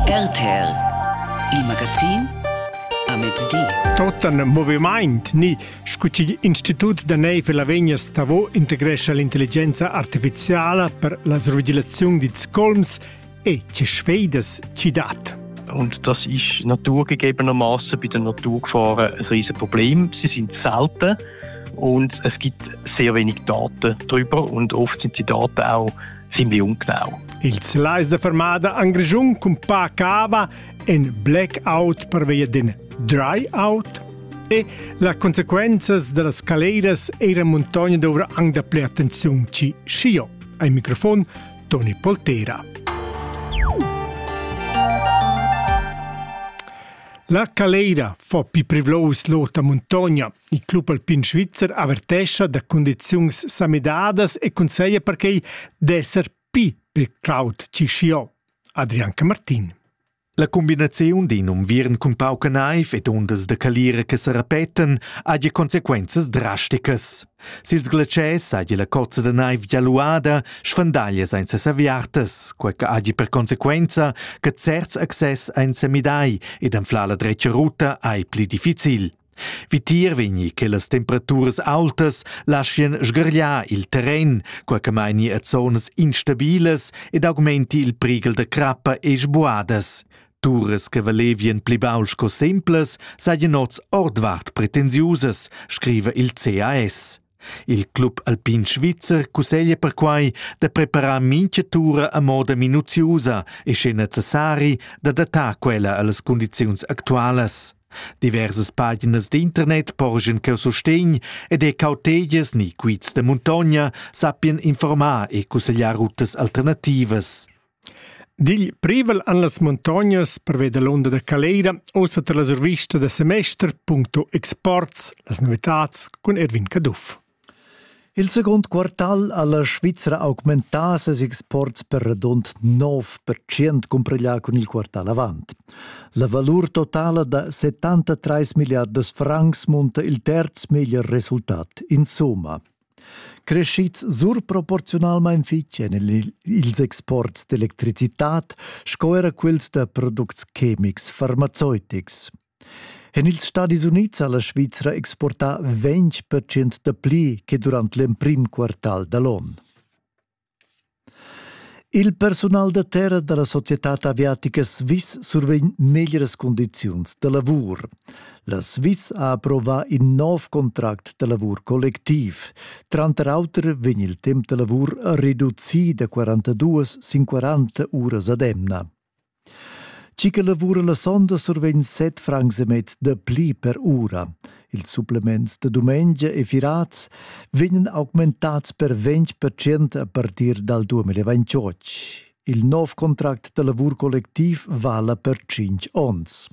RTL Il magazin a mezdi. Tot ein movimaint ni scu chi Institut da neiv e Lavegna Stavo integrescha l'intelligenza artificiala per la svigilaziun dils colms e che sfeidas ci dat. Und das ist naturgegebenermaßen bei der Natur gefahren ein riesiges Problem. Sie sind selten und es gibt sehr wenig Daten darüber und oft sind die Daten auch Simliung Clau. Ils lais da fermada en Grischun cun pa cava en blackout pervia d'in dry out e las consequenzas da las caleras era muntogna dovrà anche dapplè attenzione ci scio. Ai microfon Toni Poltera. La caleira fa più privlos l'ota montogna Il club alpin svizzer avertescha da cundiziuns samidadas e consegia perquei d'esser pi per Claude Cischiot. Adrian Camartin. La combinaziun d'in unviern cun pauca naiv ed undas da calira che sa repetan haja consequenzas drasticas. Sils glatschers haja la cozza da naiv gialuada sfandaglia senza saviartas, quai che haja per consequenza che certs access ein semidai ed anflar la dretga ruta ei pli difficil. Vitier vegni che las temperaturas aultas laschien sgargliar il terren, quei che meini a zonas instabilas ed augmenti il prighel da crappa e sbuadas. Turas che valevien pli baul sco semplas saien oz ordvart pretensiusas, scriva il CAS. Il club alpin svizzer cusseglia perquai da preparar mintga tura a moda minuziusa e sche necessari d'adattar quella a las cundiziuns actualas. Diversas paginas d'internet porgen cheu sustegn ed e cautegias ni quiz da muntogna sappien informar e cussegliar rutas alternativas. Digl privel han las muntognas pervia dall'onda da caleira ussa tar la survista da semester puncto exports las novitads cun Erwin Caduff. Il secund quartal ha la Svizra augmentà ses exports per radund 9% cumpreglia cun il quartal avant. La valur totala da 73 milliardas francs munta il terz meglier resultat, insomma. creschids surproporziunalmain fitg en ils exports d'electricitad sco era quels da products chemics farmaceutics. En ils Stadis Unids ha la Svizra exportà ventg percent dapli che durant l'emprim quartal da l'onn. Il persunal da terra dalla societad aviatica Swiss survegn meglieras cundiziuns da lavur. La Swiss ha approvà in nov contract da lavur collectiv. Tranter auter vegn il temp da lavur reducì da 42 sin 40 uras ad emna. Tgi che lavura la sonda survegn set francs e mez da pli per ura. Ils supplements da dumengia e firats vegnan augmentads per 20% a partir dal 2028. Il nov contract da lavur collectiv vala per 5 onns.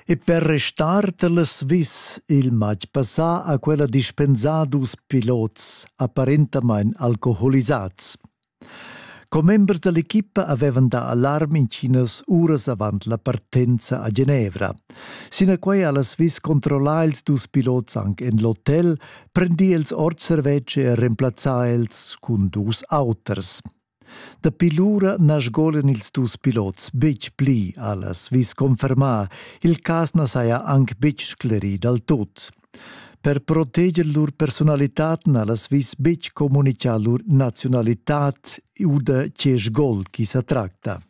E per restar da la Swiss il matg passà ha quella dispensà dus pilots apparentamain alcoholisats. Commembers dall'equipa havevan dà alarm intginas uras avant la partenza a Genevra. Sinaquei ha la Swiss controllà ils dus pilots anc en l'hotel, prendì els ord servetsch e remplazzà els cun dus auters. Dapi lura na sgolan ils dus pilots betg pli, ha la Swiss confermà. Il cas na saja anc betg sclerì dal tut. Per proteger lur personalitad na las vis betg communicar lur naziunalitad u da Tschesgol chi sa tracta.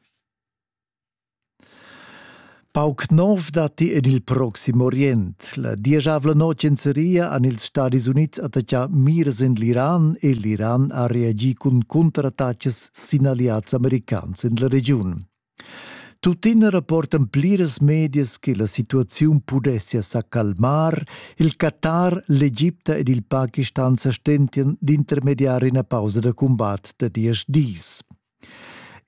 Pauc nov datti en il Proxim Orient. La diesavla notg en Seria han ils Stadis Unids attaccà mirs en l'Iran e l'Iran ha reagì cun contrattacas sin alleads americans en la regiun. Tuttina rapportan pliras medias che la situaziun pudessia sa calmar. Il Qatar, l'Egipta ed il Pakistan sa stentian d'intermediar ina pausa da cumbat da diesch dis.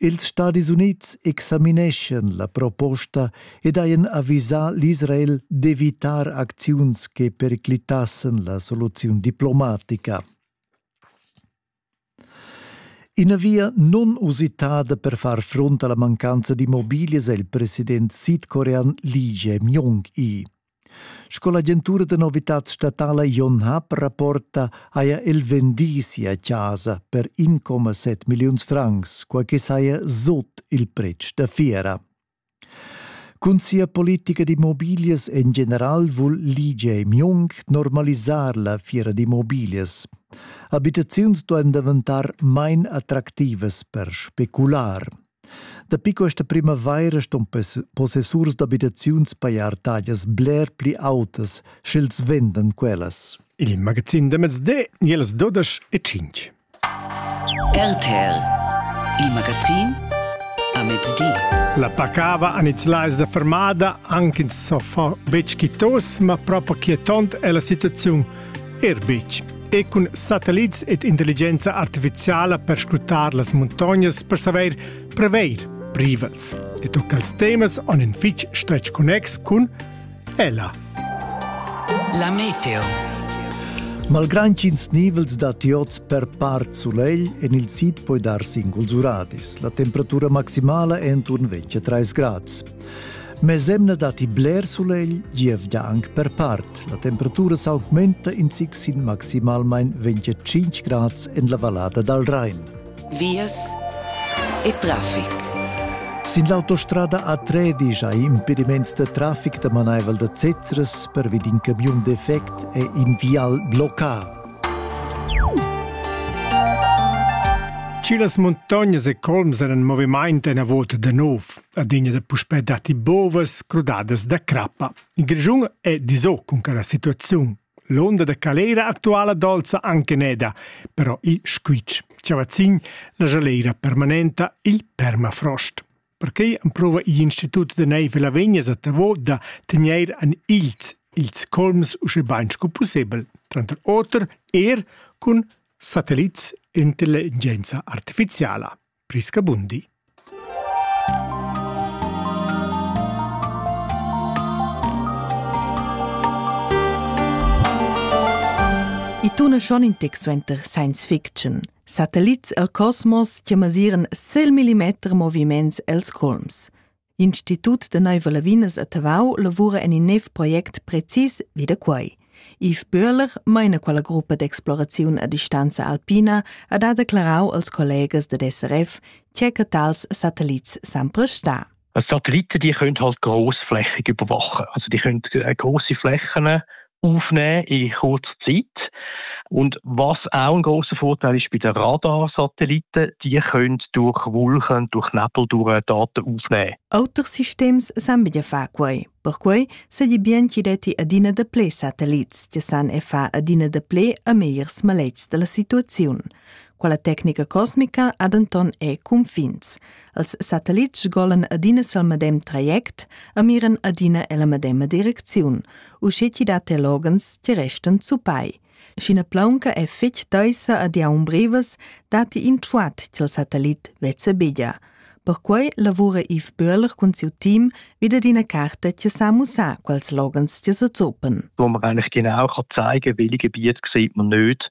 Ils Stadis Unids examineschan la proposta ed hajan avisà l'Israel d'evitar acziuns che periclitassen la soluziun diplomatica. Ina via non usitada per far frunt alla mancanza d'immobilias è il president sidcorean Lee Jae-myung i. Sco l'agentura da novitad statala Yonhap rapporta, haja el vendì sia chasa per 1,7 milliuns francs, quai che saja sut il pretsch da fiera. Cun sia politica d'immobiglias en general vul l'IGE Mjung normalisar la fiera d'immobiglias. Abitaziuns duain daventar main attractivas per specular. Dapi questa primavaira ston possessurs d'abitaziuns pajar taglias bler pli autas, sch'els vendan quellas. Il magazin da mezdi, ils dudesch e tschintg. RTL Il magazin a mezdi. La pacava an its lais da fermada, anc ins so far betg quitos, ma propo quietont è la situaziun er betg. E cun satellits ed intelligenza artificiala per scrutar las muntognas per saver preveir privels. E tocca als temas on in fitg stretg connex cun Ella. La meteo. Malgrad ch'ins nivels dat iots per part sulegl, en il sid puoi dar singuls uradis. La temperatura maximala è enturn 23 grads. Mesemna datti bler sulegl, gievgia anche per part. La temperatura s'augmenta in zic sin maximalmain 25 grads en la vallada dal Rhein. vias e traffic. Sin l'autostrada a Tredisch ha impediments da traffic da manaivel da Zezeres pervi d'in camiun defect e in vial bloccà. Cilas montognas e colms eran en moviment enavot da nov, adegna da puspè datti bovas crudadas da crappa. Il Grischun è diso cun quella situaziun. L'onda da calera actuala dolza anche neda, però il squitsch chavazzin la jalera permanenta il permafrost. Perquei amprova igl institut da neiv la vegnas a Tavo da tener an ils ils colms usche bain sco possibel, tranter oter er cun satellits intelligenza artificiala. Priscabundi. I tuna schon in tec suenter science fiction. Satellits el cosmos che masiran sel millimeter moviments els colms. Institut de Neiva Lavinas a Tavau lavura en in nov project precis vi da quei. Yves Böhler meina quella gruppa d'exploraziun a distanza alpina ha da declarau als collegas dad SRF tge che tals satellits san prestar. Satelliten die können halt grossflächig überwachen. Also die können äh, große Flächen aufnehmen in kurzer Zeit. Und was auch ein großer Vorteil ist bei den Radarsatelliten, die können durch Wolken, durch Nebel durch Daten aufnehmen. Auters systems san bidia fa quei. Perquei se di bien chi detti adina de ple satellits, che san e fa adina de ple a megliers malets della situazione. Quella tecnica cosmica ha denton e confins. Els satellits golan adina sil medem traject e miran adina ella medema direcziun, uschè chi dat teologens che restan zupai. Sch'ina plaunca è fetg taisa ad iaun brevas, dati in truat ch'il satellit vezza beglia. Perquai lavura Yves Böhler cun siu team vid adina carta che sa mussar quels logens che se zopen. Wo wir eigentlich genau kann zeigen, welche Gebiete sieht man nicht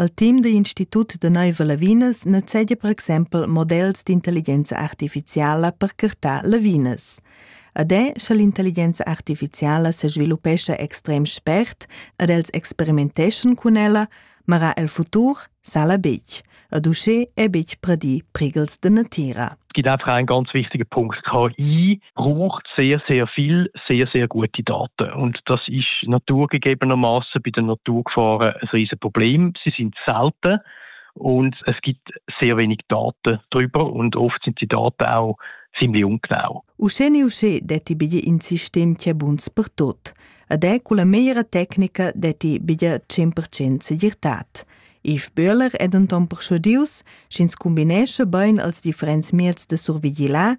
Al team da Institut da naiva Lavinas nezzegia per exempel models d'intelligenza artificiala per curtar lavinas. Ad è, sche l'intelligenza artificiala se sviluppescha extrem spert ed els experimenteschan cun ella, mara el futur sala betg, ad uschè è betg pradì prighels de natira. Es gibt einfach einen ganz wichtigen Punkt. KI braucht sehr, sehr viel, sehr, sehr gute Daten. Und das ist naturgegebenermaßen bei der Naturgefahren ein riesiges Problem. Sie sind selten und es gibt sehr wenig Daten darüber und oft sind die Daten auch ziemlich ungenau. Usce ne usce detti bigli in sistem che buns per tot. Ad è con la meglio tecnica detti biglia 100% segirtad. Yves Böhler è denton persuadius, sch'ins combinesce bein als differents mieds de survigilar,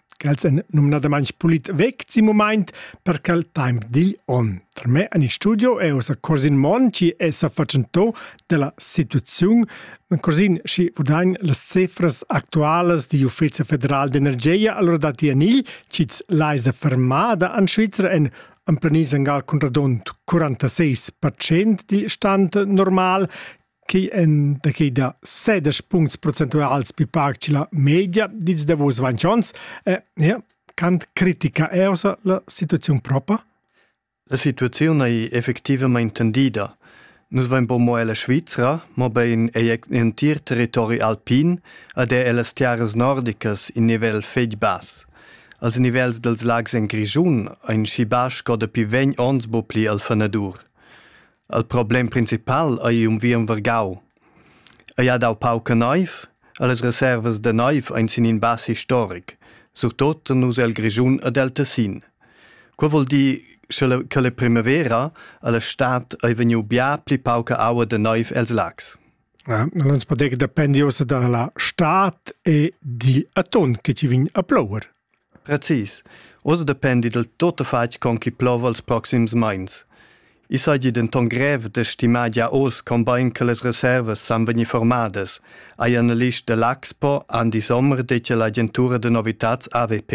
quels èn numnadamain pulit vegts in mumaint per quel temp digl on. Per me en il studio è ossa Corsin Mon chi è sa fatschentò della situaziun. Corsin, schi vudain las cifras actualas di Ufficio Federal d'Energia allora dati a Nil, chi's laisa fermada an Svizzera en emplenir sangal cun radont 46% di stand normal, Quai èn da quai da sedesch puncts procentuals pli pac che la media dils davos ventg onns. E, ja, quant critica è ossa la situaziun propa? La situaziun è effectivament tendida. Nus vain po mo ella Svizra, mobein ei entir territori alpin ad è ellas tiaras nordicas in nivel fetg bass. Als nivels dels lags en Grischun ein schi bass sco dapi vegn ons bu pli al fenadur. Il problem principal ei unviern vargau. Ei ha dau pauca neiv, e las reservas da neiv ein sin in bas historic, surtot en nus el Grischun ed el Tessin. Quei vul dir che la, che la primavera a la stad ei vegniu bia pli pauca aua de neiv els lags. Ja, Allons poter che dependi ossa dalla stad e di aton che ci vin a plower. Precis. Ussa dependi dil tuttafatg con ch'i plova els proxims meins. I seigi denton grev da stimar gia oz cumbein che las reservas san vegnir formadas, ha il analist dell'Axpo Andi Sommer detg all'agentura da novitads AWP.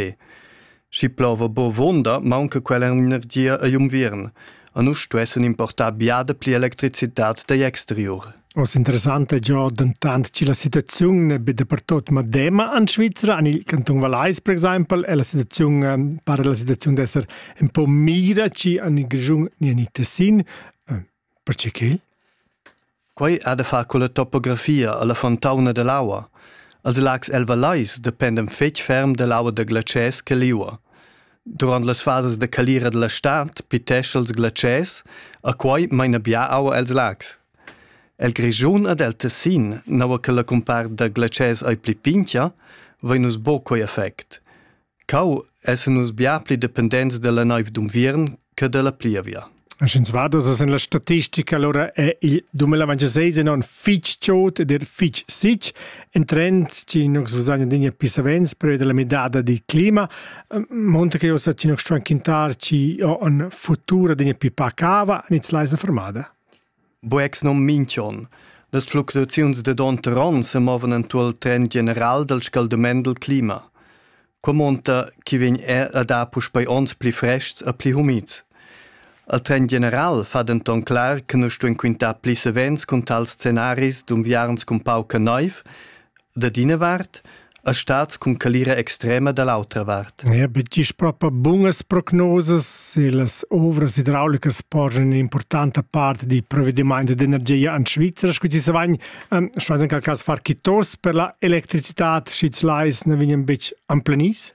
Schi plova buca vuonda, maunca quella energia egl unviern. a nus stuessen importar biada pli electricitat dagl exterior. Os interessante già dentant che la situaziun è be dapertut medema en Svizzera, en il Canton Valais per exempel, e la situaziun eh, pare la situaziun d'essere un po' mira ci en il Gigiun ni en il Tessin. Eh, perché quel? Quei ha da far con la topografia alla fontauna dall'aua. Els lags elvalleis dependan fetg ferm dall'aua da glatschers che liua. Durant las fasas da calira dalla stad pitesch'els els glatschers, a quei meina bia aua els lags. El Grischun ad el Tessin, naua che la cumpart da glatschers ei pli pincha, vein nus buca quei effect. Cau essan nus bia pli dependents dalla neiv d'unviern che dalla plievia. Sch'ins va en la statistica, allora è il 2026 enorm fitg chod ed er fitg sitg, in trend che noi usain adina più savens periodo della midada del clima, monta che ossa ci noi stuan quintar ci ho un futur adina più pacava, nit leisa fermada. Boex nom minch'on. Las fluctuaziuns dad onter on semovan entuorn il trend general dal scaldament dal clima. Qua monta chi vegn er a dar puspei ons pli frests e pli humids. Il trend general fa denton clar che nus stuein quintar pli savens cun tals scenaris d'unviarns cun pauca neiv, dad ina vart e stats cun calira extrema da l'autra vart. Ja, betg proprio bunas prognosas e las ovras idraulicas porgen un'importante parte di provvedimenti d'energia in Svizzera, scusi se vain, um, schwein in quel cas far kitos per la electricità, schi lais ne vegnan betg amplanis?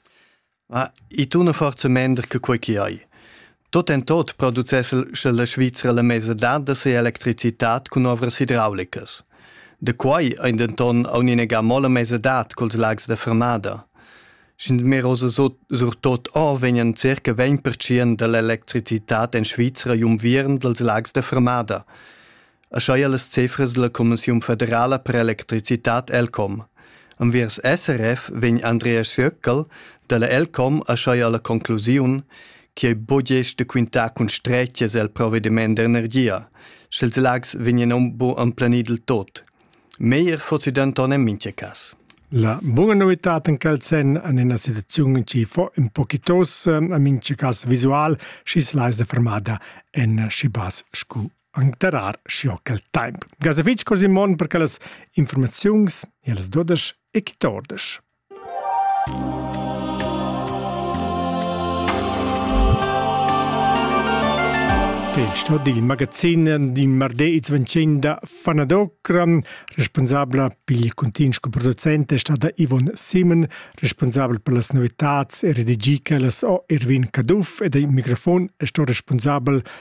Ma i tuna forza mender che quei che ei. Tot en tot producess el sche la Svizra la mesa dadas e electricitat cun ovras hidraulicas. Da quei ein denton aunc inegà mo la mesa dat culs lags da fermada. Sch'in merosa surtot o vegnan circa 20% dall'electricitat en Svizra jumvieren dals lags da fermada. aschia las cefras dalla Commissiun federala per electricitad Elcom. Enviers SRF vegn Andreas Jöckel dalla Elcom aschia alla conclusiun che bugesch de quintar cun stretias el provvediment d'energia, sch'ils lags vegnan aunc bu emplenir del tot. Meglier fossi denton en mintga cas. La buona novità in quel sen an ina situaziun ci fo in pochitos a mince cas visual, schis leis de fermada en schibas scu anc darar sco quel temp. Gas a vitg cor Simon per quellas informaziuns e las dodesch e quittordesch. Il sto dil magazin din marde its vencin da Fanadocran, responsabla pil continu sco producent è stata Ivon Simon, responsabel per las novitats e redigica las o Irvin Caduff ed il microfon è sto responsabel